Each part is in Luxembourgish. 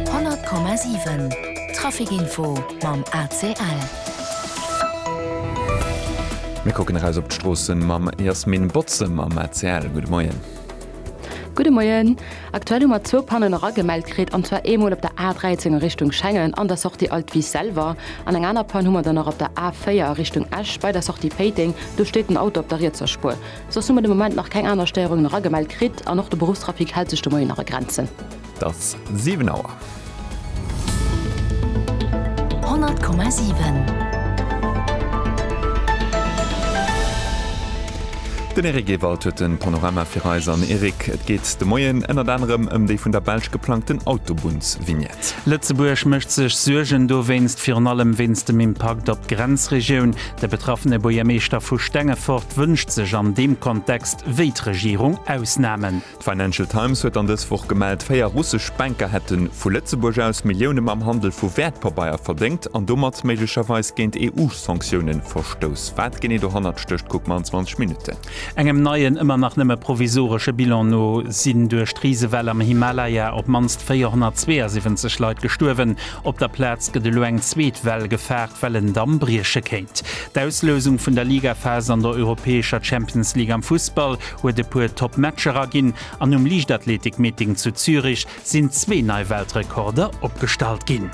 100,7 Trafic-Info mam ACL. Mir kucken eraus op d'Stroosse mam Jasmin Botze mam ACL. Gudde Moien. Gudde Moien. Aktuell hu mer zwou Pannen eragemellt kritt, an zwar eemol op der A13 a Richtung Schengen an der Sortie Alt Wies selwer. An eng aner Pann hu mer dann nach op der A4 a Richtung Esch bei der Sortie Péiteng. Do steet den Auto op der rietser Spuer. Soss hu mer de Moment nach keng aner Stéierungen eragemellt kritt an och de Beruffstrafic hält sech de Moien nach a Grenzen. Et ass 7 Auer. 100,7. Den Eric Ewald huet den Panorama fir eis. An Eric, et geet de Moien ënnert anerem ëm déi vun der Belsch geplangten Autobunnsvignette. Lëtzebuerg mécht sech Suergen dowéinst, virun allem wéinst dem Impakt op d'Grenzregioun. De betraffene Buergermeeschter vu Stengefort wënscht sech an deem Kontext, wéi d'Regierung, Ausnamen. D'Financial Times huet dann dës Woch gemellt, véier russesch Banker hätten vu Lëtzebuerg aus Millioune mam Handel vu Wäertpabeier verdéngt an domat méiglecherweis géint EU-Sanktioune verstouss. Wat genee dohannert stécht, kucke mer an 20 Minutten. Engem neien, ëmmer nach nëmme provisoresche Bilan no sinn duerch d'Risewell am Himalaya op d'mannst 472 Leit gestuerwen. Op der Plaz gëtt elo eng zweet Well gefaart, well en Damm brieche kéint. D'Auslousung vun der Ligaphas an der europäescher Champions League am Fussball huet e puer top Matcher erginn an um Liichtathletik-Meeting zu Zürich sinn zwee nei Weltrekorder opgestallt ginn.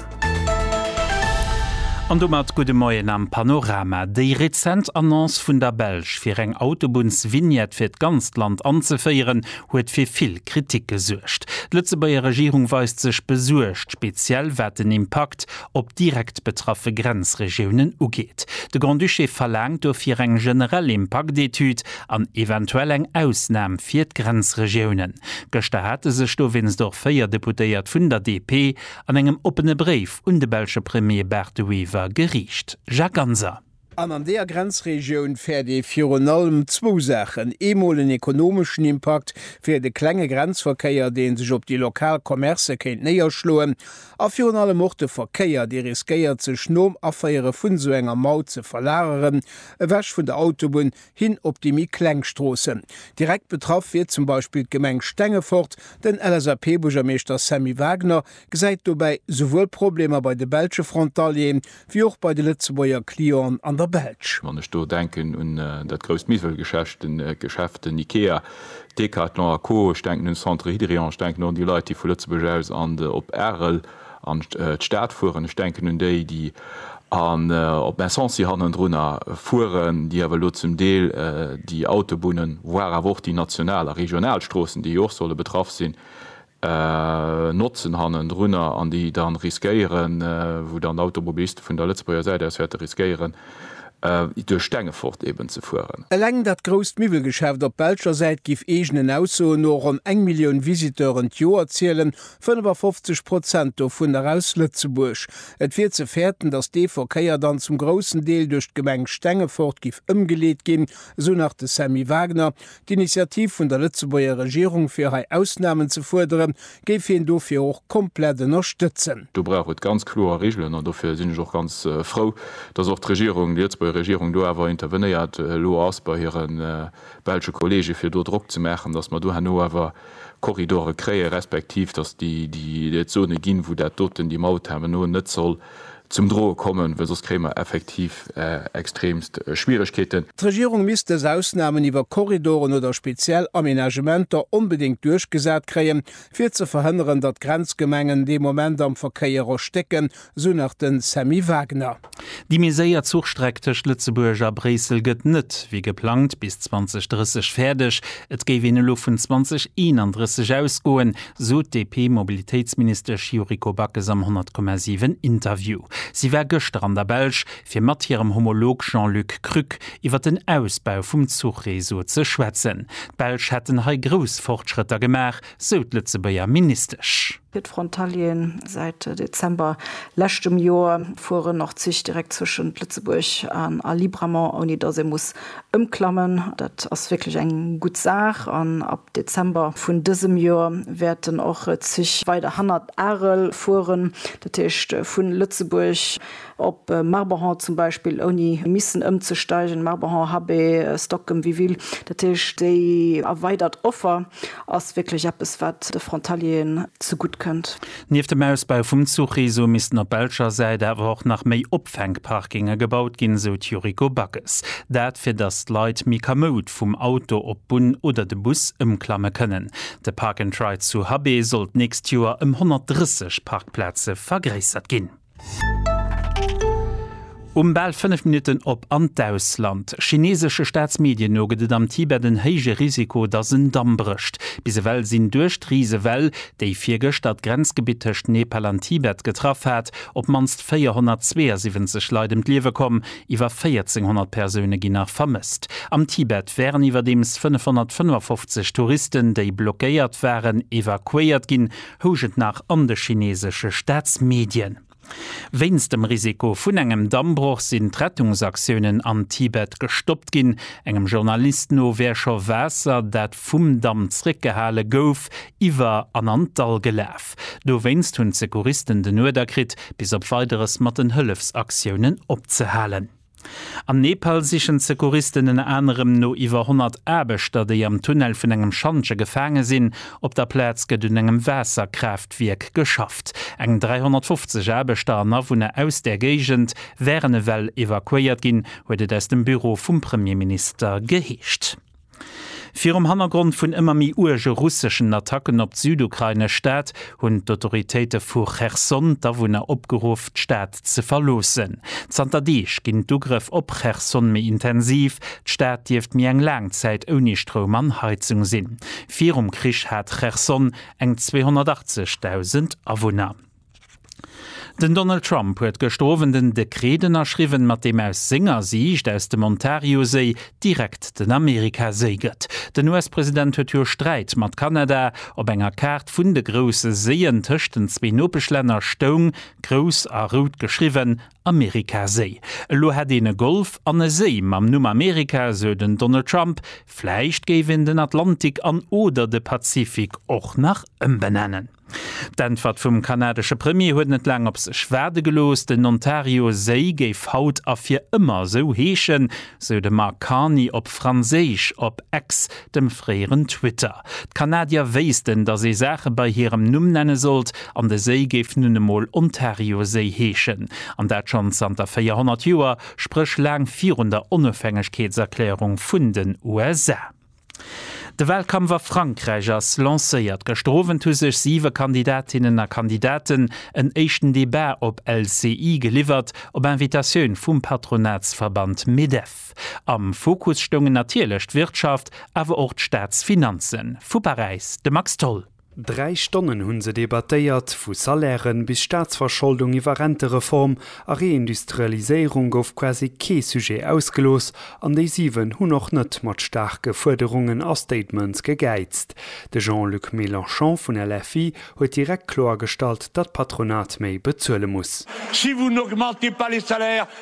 An domat gudde Moien am Panorama. Déi rezent Annonce vun der Belsch, fir eng Autobunns-Vignette fir d'ganzt Land anzeféieren, huet fir vill Kritik gesuergt. D'Lëtzebuerger Regierung weist sech besuergt, speziell wat den Impakt op direkt betraffe Grenzregiounen ugeet. De Grand-Duché verlaangt dofir eng generell Impaktetüd an eventuell eng Ausnam fir d'Grenzregiounen. Gëschter hate sech dowéinst och véier Deputéiert vun der DP an engem oppene Bréif un de belsche Premier Bart De Wever geriicht. Jacques Ganser. An an deeër Grenzregioun fäert ee virun allem zwou Saachen, eemol en ekonomeschen Impakt fir de klenge Grenzverkéier, dee sech op déi lokal Commercë kéint néierschloen, a virun allem och de Verkéier, dee riskéiert sech nom Aféiere vun esou enger Maut ze verlageren, ewech vun der Autobunn hin op déi méi kleng Stroossen. Direkt betraff wier zum Beispill d'Gemeng Stengefort. Den LSAP-Buergermeeschter Sammy Wagner gesäit dobäi souwuel Problemer bei de belsche Frontalieren, Wéi och bei de Lëtzebuerger Clienten an der Belsch. Wann ech do denken un dat grousst Miwwelgeschäft, den Ikea, Decathlon a Co. Ech denken un Centre Hydrion. Ech denken och un déi Leit, déi vu Lëtzebuerg aus an de op Arel an d'Stad fueren. Ech denken un déi, déi an op Messancy hannendrunner fueren, déi awer elo zum Deel déi Autobunnen, voire awer och déi national a regional Stroossen, déi jo och solle betraff sinn, Notzen hannendrunner an déi dann riskéieren, wou dann d'Automobiliste vun der Lëtzebuerger Säit aus wäerte riskéieren, duerch Stengefort eeben ze fueren. Eleng dat grousst Miwwelgeschäft op belscher Säit giff eegenen Aussoen no ronn eng Millioun Visiteuren d'Joer zielen, 55 Prozent dovunner aus Lëtzebuerg. Et wier ze fäerten, datt dee Verkéier dann zum groussen Deel duerch d'Gemeng Stengefort giff ëmgeleet ginn, esou nach de Sammy Wagner, D'Initiativ vun der Lëtzebuerger Regierung fir hei Ausnamen ze fuerderen, géif hien dofir och komplett ënnerstëtzen. Do brauch et ganz kloer Regelen an dofir sinn ech och ganz frou, dass och d'Regierung, déi Lëtzebuerger Regierung do awer intervenéiert elo ass bei hire belsche Kollege fir do Drock ze maachen, dass mer do herno awer Korridore kréie respektiv dass déi et Zone ginn, wou dat doten, déi Maut herno net soll zum droe kommen, well soss kréie mer effektiv extremst Schwieregkeeten. D'Regierung misst dës Ausnahmen iwwer Korridoren oder speziell Aménagementer onbedéngt duerchgesat kréien, fir ze verhënneren, datt d'Grenzgemengen dee Moment am Verkéier erstécken, sou nach de Sammy Wagner. Déi méi séier Zuchstreck tëscht Lëtzebuerg a Bréissel gëtt net wéi geplangt bis 2030 fäerdeg. Et géif een elo vun 2031 ausgoen, sot d'DP-Mobilitéitsministesch Yuriko Backes am 100,7 Interview. Si war gëschter an der Belsch, fir mat hirem Homolog Jean-Luc Krück iwwer den Ausbau vum Zuchreseau ze schwätzen. D'Belsch hätten hei grouss Fortschrëtter gemaach, sou d'Lëtzebuerger Ministesch. Fir d'Frontalieren, Säit Dezember leschtem Joer fueren och d'Zich direkt zwëschent Lëtzebuerg a Libramont, ouni datt ee muss Ëmklammen. Dat ass wierklech eng gutt Saach an ab Dezember vun dësem Joer wäerten och Zich weider hannert Arel fueren, dat heescht vu Lëtzebuerg op Marborhan zum Beispill, ouni missen ëmzesteigen, Marborhan, Habé, Stockem, Wiville. Dat heescht, déi erweidert Offer ass wierklech eppes, wat de Frontalieren zegutt kënnt. Nieft dem Ausbau vum Zuchreseau missten op belscher Säit awer och nach méi Opfänkparkinge gebaut ginn, esou d'Yuriko Backes. Dat, fir datt d'Leit méi kamoud vum Auto op d'Bunn oder de Bus ëmklamme kënnen. De Park and Ride zu Habé soll d'nächst Joer ëm 130 Parkplaze vergréissert ginn. Um bal 5 Minutten op an d'Ausland. Chineesesche Staatsmedien no gëtt et am Tibet en héije Risiko, datt en Damm brécht. Bis ewell sinn duerch d'Risewell, déi virgëschter d'Grenzgebitt tëscht Nepal an Tibet getraff hat, op d'mannst 472 Leit ëm d'Liewe komm. Iwwer 1400 Persoune ginn nach vermësst. Am Tibet waren iwwerdeems 555 Touristen, déi blockéiert waren, evakuéiert ginn. housch et nach an de chineesesche Staatsmedien. Wéinst dem Risiko vun engem Dammbroch sinn d'Rettungsaktiounen am Tibet gestoppt ginn. Engem Journalist no wär scho Waasser, dat vum Damm zréckgehale gouf, iwwer an an d'Dall gelaf. Dowéinst hunn d'Secouristen den Uerder kritt, bis op Weideres mat den Hëllefsaktiounen opzehalen. Am Nepal sichen d'Secouristen ënner anerem no iwwer 100 Aarbechter, déi am Tunnel vun engem Schantje gefaange sinn. Op der Plaz gëtt un engem Waasserkraaftwierk geschafft. Eng 350 Aarbechter an Awunner aus där Géigend wären ewell evakuéiert ginn, huet et aus dem Büro vum Premierminister geheescht. Virum Hannergrond vun ëmmer méi uerge russeschen Attacken op d'südukrainesch Stad hunn d'Autoritéite vu Cherson d'Awunner opgeruff, d'Stad ze verloossen. Zanter Deeg ginn d'Ugrëff op Cherson méi intensiv. D'Stad dierft méi eng laang Zäit ouni Stroum an Heizung sinn. Virum Krich hat Cherson eng 280.000 Awunner. Den Donald Trump huet gëschter Owend en Dekret ënnerschriwwen, mat deem aus senger Siicht aus dem Ontarioséi direkt den Amerikaséi gëtt. Den US-President huet jo Sträit mat Kanada. Op enger Kaart vun de grousse Séien tëscht den zwee Nopeschlänner stoung, grouss a rout geschriwwen, Amerikaséi. Elo hätt een e Golf an e Séi mam Numm Amerika, sou den Donald Trump. Vläicht géif een den Atlantik an oder de Pazifik och nach ëmbenennen. D'Äntwert vum kanadesche Premier huet net laang op sech waarde gelooss. Den Ontario-Séi géif haut a fir ëmmer esou heeschen, sou de Mark Carney op Franséisch op X, dem fréieren Twitter. D'Kanadier wéissten, datt ee Saache bei hirem Numm nenne sollt, an de Séi géif nun emol Ontarioséi heeschen. An dat schonn zanter 400 Joer, spréch laang virun der Onofhängegkeetserklärung vun den USA. De Wahlkampf a Frankräich ass lancéiert. Gëschter Owend hu sech siwe Kandidatinnen a Kandidaten en éischten Debat op LCI geliwwert, op Invitatioun vum Patronatsverband Medef. Am Fokus stoungen natierlech d'Wirtschaft, awer och d'Staatsfinanzen. Vu Paräis de Max Tholl. Dräi Stonnen hunn se debattéiert, vu Salairen bis Staatsverscholdung iwwer Rentereform a Reindustrialiséierung gouf quasi kee Sujet ausgelooss an déi 7 hunn och net mat staarke Fuerderungen a Statements gegäizt. De Jean-Luc Mélenchon vun LFI huet direkt kloergestallt, datt d'Patronat méi bezuele muss.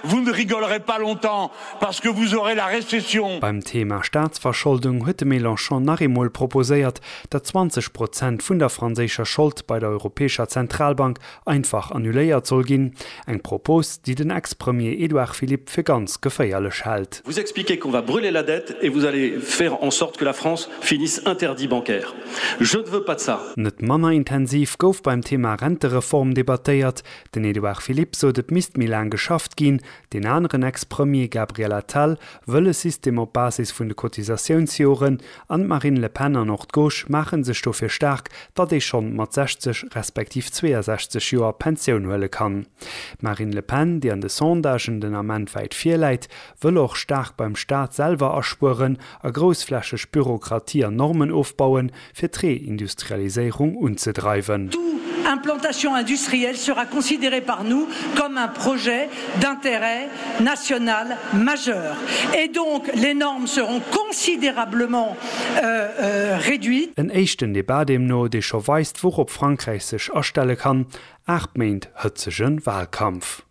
Vous ne rigolerez pas longtemps parce que vous aurez la récession. Beim Thema Staatsverscholdung huet de Mélenchon nach eemol proposéiert, datt 20 Prozent vun der franséischer Schold bei der Europäescher Zentralbank einfach annuléiert soll ginn, eng Propos, déi den Ex-Premier Édouard Philippe fir ganz geféierlech hält. Vous expliquez qu'on va brûler la dette et vous allez faire en sorte que la France finisse interdit bancaire. Je ne veux pas de ça. Net manner intensiv gouf beim Thema Rentereform debattéiert, Den Edouard Philippe sot et misst méi laang geschafft ginn, deen aneren Ex-Premier Gabriel Attal wëll e System op Basis vun de Cotisatiounsjoren an d'Marine Le Pen an och d'Gauche maache sech dofir staark, datt ee schonn mat 60 respektiv 62 Joer Pensioun huele kann. D'Marine Le Pen, déi an de Sondagen den Ament wäit vir läit, wëll och staark beim Staat selwer aspueren a groussflächeg Bürokratie an Normen ofbauen, fir d'Reindustrialiséierung unzedreiwen. Tout implantation industrielle sera considérée par nous comme un projet d'intérêt national majeur et donc les normes seront considérablement réduites. En éischten Debat deemno, dee scho weist, wourop Frankräich sech astelle kann, Aacht Méint hëtzege Wahlkampf.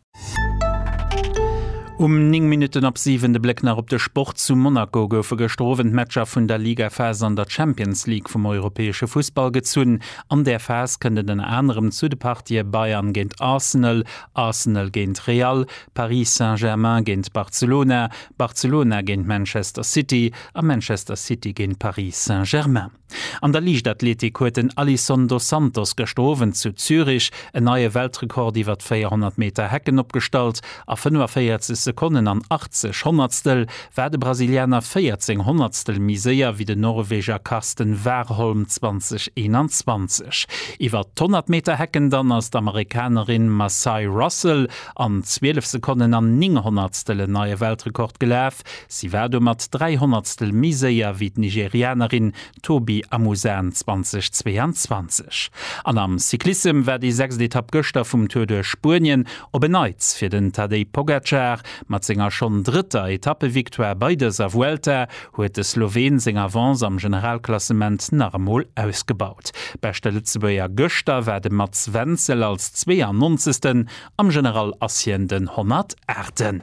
Um 9 Minutten op 7 de Bléck nach op de Sport, Zu Monaco goufe gëschter Owend d'Matcher vun der Ligaphas an der Champions League vum europäesche Fussball gezunn. An där Phas kënnt et ënner anerem zu de Partië Bayern géint Arsenal, Arsenal géint Real, Paris Saint-Germain géint Barcelona, Barcelona géint Manchester City a Manchester City géint Paris Saint-Germain. An der Liichtathletik huet den Alisson dos Santos gëschter Owend zu Zürich en neie Weltrekord iwwer d'Véierhonnert Meter Hecken opgestallt. A 45 Sekonnen an 80 Honnertstel war de Brasilianer 14 Honnertstel méi séier wéi den Norweger Karsten Warholm 2021. Iwwer d'Honnert Meter Hecken dann ass d'Amerikanerin Massai Russell an 12 Sekonnen an 9 Honnertstel en neie Weltrekord gelaf. Weltmeeschterschaft. Si war domat dräi Honnertstel méi séier wéi d'Nigerianerin Tobi Amusan 2022. An am Cyclissem war déi sechst Etapp gëschter vum Tour duerch Spuenien op en Neits fir den Tadej Pogacar. Mat senger schonn drëtter Etappevictoire bei dëser Vuelta huet de Sloween seng Avance am Generalklassement nach emol ausgebaut. Beschte Lëtzebuerger gëschter war de Mats Wenzel als 92. Am General ass hien den 108.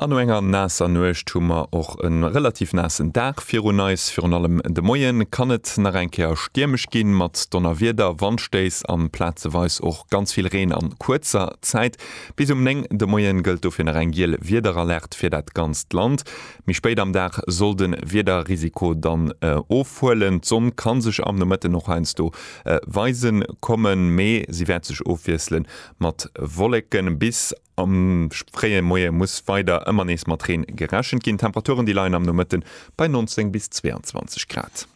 An no enger naasser Nuecht hu mer och e relativ naassen Dag virun eis. Virun allem de Moie kann et nach eng Kéier stiermesch ginn, mat Donnerwieder, Wandstéiss an plazeweis och ganz vill Reen an kuerzer Zäit. Bis um 9 de Moie gëllt dofir nach eng giel Wiederalerte fir dat ganzt Land. Méi spéit am Dag soll de Wiederrisiko dann ofhuelen. D'Sonn ka sech am Nomëtten och heiansdo weise kommen, mee si wäert sech ofwiessle mat Wolleken. Bis Am fréie Moie muss weider ëmmer nees mat Reen gerechent ginn. D'Temperaturen déi leien am Nomëtte bei 19 bis 22 Grad.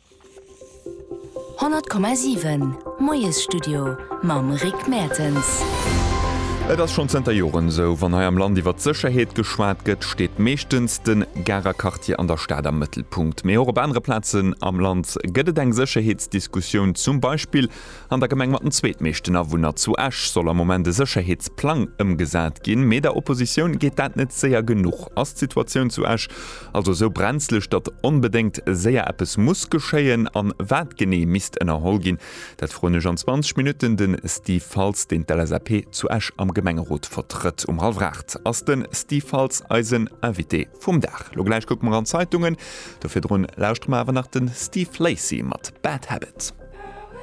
100,7 Moiesstudio mam Rick Mertens. Et ass schonn zënter Joren esou, wann hei am Land iwwert d'Sécherheet geschwat gëtt, steet meeschtens de Garer Quartier an der Stad am Mëttelpunkt. Mee och op anere Plazen am Land gëtt et eng Sécherheetsdiskussioun, zum Beispill An der Gemeng mat den zweetmeeschten Awunner, zu Esch, soll am Moment e Sécherheetsplang ëmgesat ginn. Mee der Oppositioun geet dat net séier genuch. Ass d'Situatioun zu Esch also esou brenzlech, datt onbedéngt séier eppes muss geschéien? An wat genee misst ënnerholl ginn? Dat froen ech an 20 Minutten de Steve Faltz, deen d'LSAP zu Esch am Gemengerot vertrëtt. Um hallwer 8 ass de Steve Faltz eisen Invité vum Dag. Lo gläich kucke mer an d'Zeitungen. Do virdrun lauschtere mer awer nach de Steve Lacy mat Bad Habit.